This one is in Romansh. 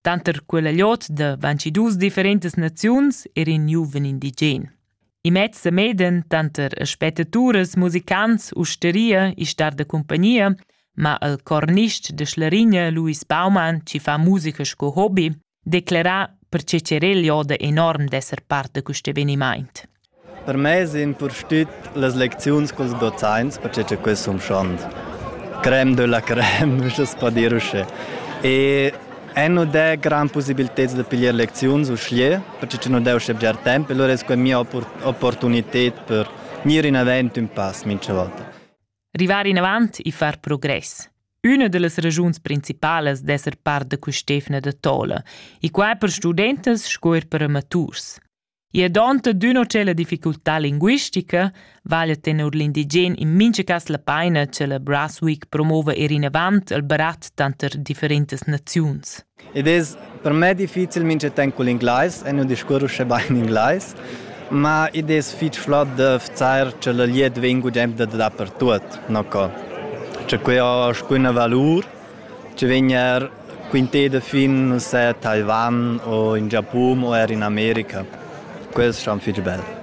Tanter quella gliot da 22 differentas naziuns era in giuven indigen. Imez e meden tanter spetaturas, musicants, usteria e star da compagnia, ma il cornist de Schlarigna Luis Baumann, ci fa musica sco hobby, declara perche cerel joda enorm d'esser parte quest evenimaint. Per mei sin purstit las lecziuns culs dozaints per che quei sun schond. Creme de la creme, uschess per dir uschè. E eh nu dà grand pussibilteds da piglier lecziuns uschè, perche che nu dà uschè bger temp e lura es quai mia opportunited per gnir inavant ün pass mincha volta. Rivar inavant e far progress. Üna da las ragiuns principalas d'esser part da quist'efna da tola, e quai per studentas sco er per amaturs. I è donta d'üna o tschella difficultà linguistica, vaglia tenor l'indigen in mincha cas la paina cha la Brasweek promova eir inavant al barat tanter differentas naziuns. Id es per me difficil mincha temp cul inglais e nu discurr uschè bain inglais, ma id es fich flot da vzar cha la glieud vegn gugent da dapertuot, no co. Cha que ho alcuna valur Tgei vegn er quintei da fin ussa a Taiwan o in Giapun o er in America? Quels ston fich bel.